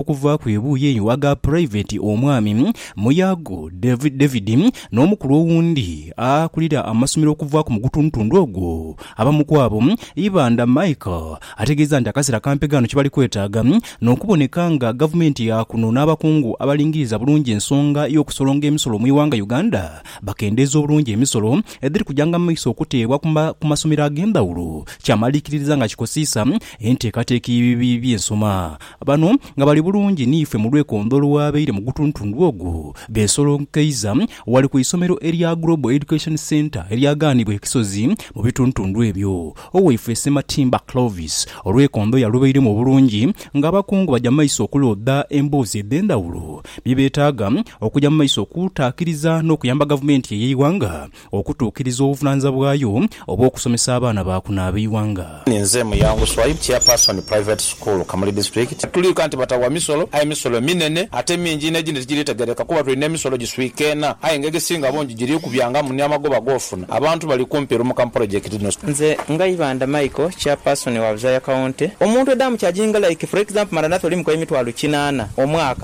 okuvaaku ebuuyi eyo aga Puraiveti Omwami Muyago David n'omukulu owundi akulira amasomero okuvaaku mu gutundutundu ogwo. Abamu ku abo, Ibanda Michael ategeeza nti akaseera kampi ghano kye bali kwetaaga n'okuboneka nga gavumenti ya kuno n'abakungu abalingiriza bulungi ensonga y'okusolonga emisolo mu ighanga Uganda bakendeeze obulungi emisolo edhiri kujanga mu maiso okuteebwa ku masomero ag'endhawulo kyamaliikiririza nga kikosiisa enteekateeka y'ebibiina by'ensoma Bano nga bali bulungi niife mu lwekondo olwabaire mu gutuntundu ogwo, beesolonkeiza ghale ku isomero erya Global Education Centre eryagaanibwa e Kisozi mu bituntundu ebyo. Owaifwe Ssematimba Clovis olwekondo yalubairemu obulungi nga abakungu baja mu maiso okulooda emboozi edh'endhawulo bye beetaaga okuja mu maiso okutaakiriza n'okuyamba gavumenti ey'eighanga Okutuukiriza obuvunaanyizibwa bwayo obw'okusomesa abaana ba kuno ab'eighanga. Nze Muyangu Swaib, Chairperson Private School Kamuli District. Tuli ika nti batawa misolo, aye emisolo minene ate mingi inho egindi tigiritegeereka kuba tulina emisolo giswiikeena aye nga egisinga bungi giri kubyangamu ni amagoba g'ofuna. Abantu bali kumpi lumuka mu polojekiti dhino. Nze Ngaibanda Michael, Chairperson wa Buzaaya County. Omuntu edha mucharginga like for example Maranatha oli mukoye emitwalo kinaana omwaka.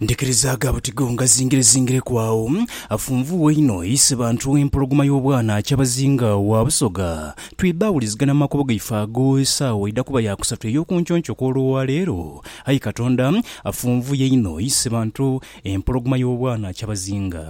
Ndikirizaaga butigo nga zingirezingireku agho, afunvuugha inho ise bantu empologoma y'obwana akyabazinga wa Busoga. Twidha awulizigana mu makubo gaife ago esaawa eidha kuba ya kusatu ey'okunconco kw'olwa leero. Aye Katonda afunvuuye inho ise bantu empologoma y'obwana akyabazinga.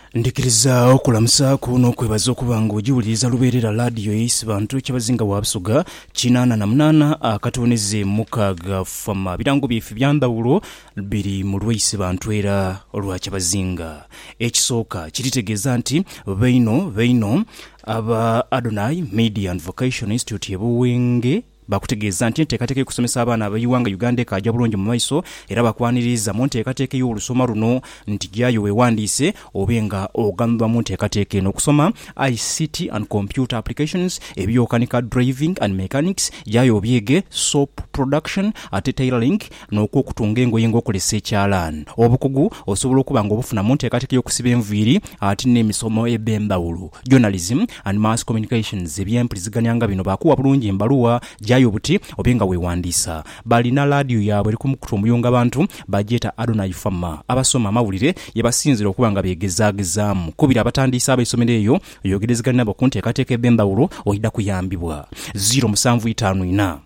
Ndhikiriza okulamusaaku n'okwebaza okuba nga ogiwuliriza lubeerera laadiyo ya Isibantu kyabazinga wa Busoga kinaana na munaana akatooneze mukaaga FAMA. Birango byaife bya ndhawulo biri mu lwa Isibantu era lwa kyabazinga. Ekisooka, kiri tegeeza nti baino baino aba Adonai Media and Vocation Institute e Buwenge, Baakutegeeza nti enteekateeka y'okusomesa abaana ab'eighanga Uganda ekaaja bulungi mu maiso era baakwaniriiza mu nteekateeka ey'olusoma luno nti jaayo weewandiise obe nga oganyulwa mu nteekateeka eno okusoma ICT and Computer Applications, ebiyokanika, Driving and Mechanics, jaayo obyege, Soap Production ate Tailoring, n'okw'okutunga engoye ng'okozesa ekyalaani. Obukugu osobola okuba nga obufuna mu nteekateeka y'okusiba enviiri ate n'emisomo edh'endhawulo, journalism and mass communications, eby'empuliziganya nga bino baakuwa bulungi mbaluwa gyayo buti obe nga weewandiisa. Balina laadiyo yaabwe eri ku mukutu omuyunga abantu, bagyeta Adonai Fama. Abasoma amawulire ye basinziira okuba nga beegezaagezaamu. Kubira abatandiise ab'eisomero eyo oyogerezegane nabo ku nteekateeka edh'endhawulo oidha kuyambibwa. Ziro musanvu itaanu ina.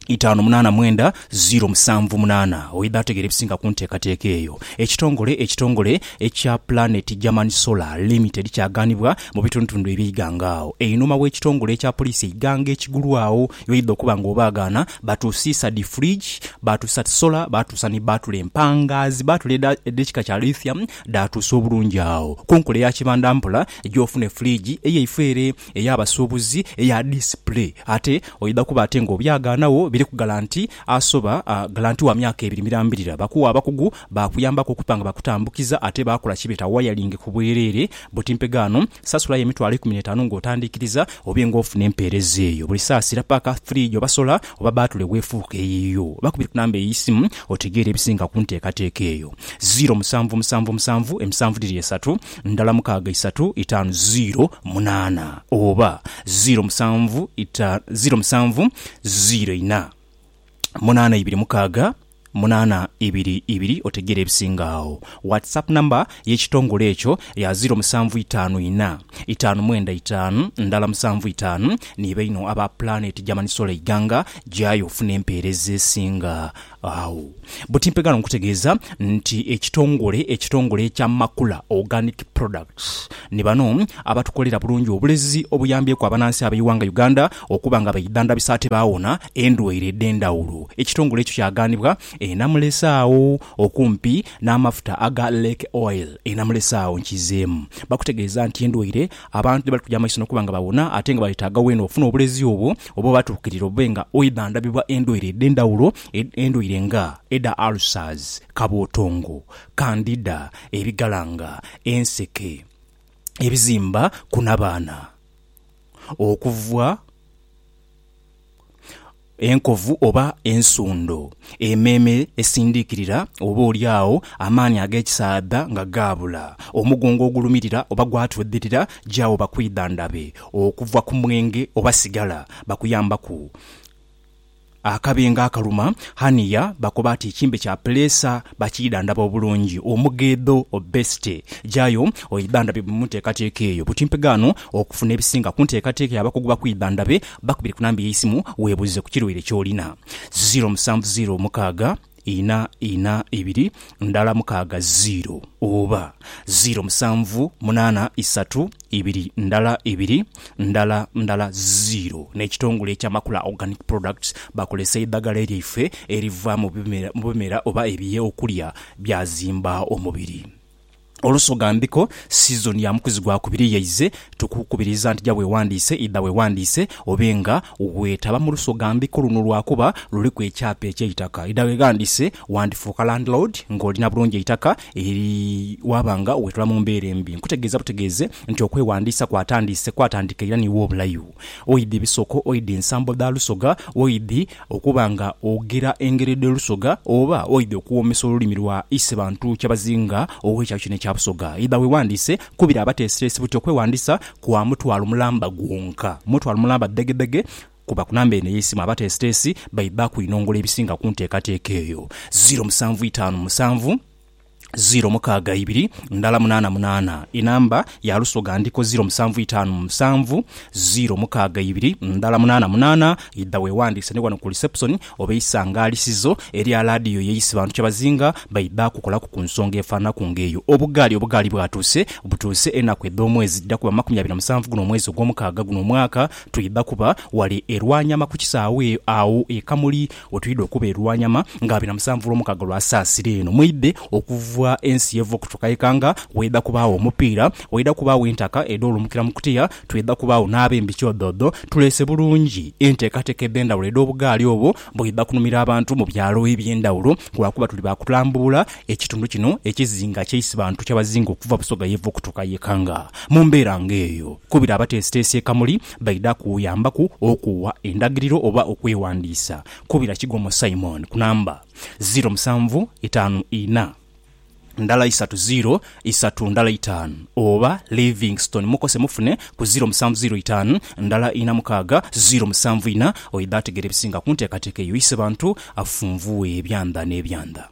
itaanu munaana mwenda ziro musanvu munaana. Oidha ategeera ebisinga ku nteekateeka eyo. Ekitongole ekitongole ekya Planet German Solar Limited kyaganibwa mu bitundutundu eby'eighanga agho einhuma w'ekitongole ekya poliisi eighanga ekigulwagho. Yoidha okuba nga obaagaana, baatusiisa dhi fridge, baatusa solar, baatusa ni bbaatule empangaazi, bbaatule edha edh'ekika kya lithium dhaatuusa obulungi agho. Ku nkola eya kibanda mpola, gya ofune fridge eyaifo ere. ey'abasuubuzi eya display ate oidha kuba ate nga obyagaanagho biriku galanti asoba galanti wa myaka ebiri mirambirira. Bakuwa abakugu baakuyambaku okuba nga bakutambukiza ate baakola kye beeta wiring ku bwereere buti mpegaano. Sasulayo emitwalo ikumi n'etaanu ng'otandiikiriza obe ng'ofuna empeereza eyo buli saasira paaka firiigi oba sola oba bbaatule bw'efuuka eyiyo. Bakubire ku namba ey'eisimu otegeere ebisinga ku nteekateeka eyo, ziiro musanvu musanvu musanvu emisanvu dhiri esatu ndala mukaaga isatu itaanu ziiro munaana oba ziiro musanvu ita, ziiro musanvu ziiro ina munaana ibiri mukaaga munaana ibiri ibiri otegeera ebisinga agho. WhatsApp number y'ekitongole ekyo ya ziiro musanvu itaanu ina, itaanu mwenda itaanu, ndala musanvu itaanu. Ni baino aba Planet German Solar Iganga, gyayo ofune empeereza esinga Agho buti mpegha n'okutegeeza nti ekitongole ekitongole ekya Makula Organic Products ni bano abatukolera bulungi obulezi obuyambyeku abanansi ab'eighanga Uganda okuba nga beidhandhabisa ate baawona endwaire edh'endhawulo. Ekitongole ekyo kyaghanibwa e Namulesaagho okumpi n'amafuta aga Lake Oil e Namulesaagho. Nkizeemu bakutegeeza nti endwaire Abantu tibali kuja maiso n'okuba nga bawona ate nga balyetaaga weena okufuna obulezi obwo oba obaatuukirira obe nga oidha ndhabibwa endwaire edh'endhawulo endwaire nga edha ulcers, kabootongo, candida, ebigalanga, enseke, ebizimba ku nabaana okuvwa. Enkovu oba ensundo. Emeeme esindiikirira oba oli agho amaani ag'ekisaadha nga gaabula. Omugongo ogulumirira oba gwatwedhirira gyawo bakwidhandhabe okuva ku mwenge oba sigala. Bakuyambaku akabengo akaluma haniya bakoba ati ekimbe kya puleesa bakiidhandhaba obulungi. Omugheedho, obesite. Gyayo oidhandhabibwe mu nteekateeka eyo. Buti mpegha ghano okufuna ebisinga ku nteekateeka y'abakugu bakwidhandhabe Bakubire ku namba y'eisimu weebuuze ku kirwaire ky'olina, ziiro musanvu ziiro mukaaga ina ina ibiri ndala mukaaga ziiro oba ziiro musanvu munaana isatu ibiri ndala ibiri ndala ndala ziiro. N'ekitongole eky'amakula Organic Products bakozesa eidhagala lyaife eriva mu bimera oba ebyokulya byazimba omubiri. Olusoga Mbiko sizoni ya mukuzi gwa kubiri yaize, tukukubiriza nti ja wewandiise, idha wewandiise obe nga wetaba mu lusoga Mbiko luno lwakuba luliku ekyapa ekyeitaka. Idha weghandiise wandifuuka landlord nga olina bulungi eitaka eri waaba nga wetula mu mbeera embi. Nkutegeeza butegeeze nti okwewandiisa kwatandiise kwatandika era niiwe obulayo. oidhi bisoko, oidhi nsambo dha lusoga, oidhi okuba nga ogira engeri dhe lusoga, oba oidhi okuwoomesa olulimi lwa ise bantu kyabazinga ow'ekyalo kino ekya Busoga, idha weewandiise ku biri abateesiteesi buti okwewandiisa kwa mutwalo mulamba gwonka. Mutwalo mulamba ddhegedhege. Kuba ku namba eno ey'eisimu abateesiteesi baidha kwinongola ebisinga ku nteekateeka eyo. Ziiro musanvu itaanu musanvu. ziro mukaaga ibiri ndala munaana munaana Enamba ya Lusoga ndiko ziro musanvu itaanu mu musanvu ziro mukaaga ibiri ndala munaana munaana Idha weewandiise ni wano ku lisepusoni oba eisangalisizo erya laadiyo y'eisi bantu kye bazinga baidha kukolaku ku nsonga efaananaku ng'eyo Obugaali Obugaali bwatuuse butuuse enaku edh'omwezi dhidha kuba makumi abiri na musanvu guno omwezi ogw'omukaaga guno omwaka Twidha kuba wale e Rwanyama ku kisaawe agho e Kamuli Wetwidha okuba e Lwanyama nga abina musanvu lwo mukaaga lwa Saasira eno mweidha okuva ensi yeva okutuka Ikanga, waidha kubaagho omupiira, waidha kubaagho entaka edho lumukira mu kutiya, twidha kubaagho n'abembi kyodhoodho. Tuleese bulungi enteekateeka edhendhawulo edh'obugaali obwo bwidha kunumira abantu mu byalo ebyendhawulo lwakuba tuli ba kulambuula ekitundu kino ekizinga kya Isibantu kyabazinga okuva Busoga yeva okutuka Ikanga mu mbeera nga eyo. Kubira abateesiteesi e Kamuli Baidha kuyambaku okuwa endagiriro oba okwewandiisa. Kubira Kigwo mu Simon ku namba, ziiro musanvu itaanu ina, ndala isatu ziiro isatu ndala itaanu oba Livingstone Mukose mufune ku ziiro musanvu ziiro itaanu ndala ina mukaaga ziiro musanvu ina. Oidha ategeera ebisinga ku nteekateeka eyo. Ise Bantu afunvughe ebyandha n'ebyandha.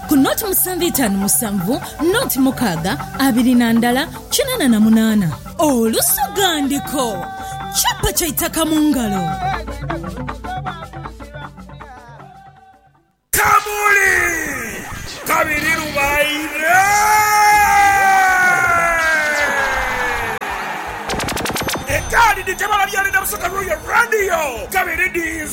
ku noti musanvu itaanu musanvu, noti mukaaga abiri na ndala kinana na munaana. Olusoghandiko, Chapa kya itaka mu ngalo. Kamuli kabiri lubaire. Ekaadi dhitebalabya Linda Busoga Royal Radio kabiri dhii.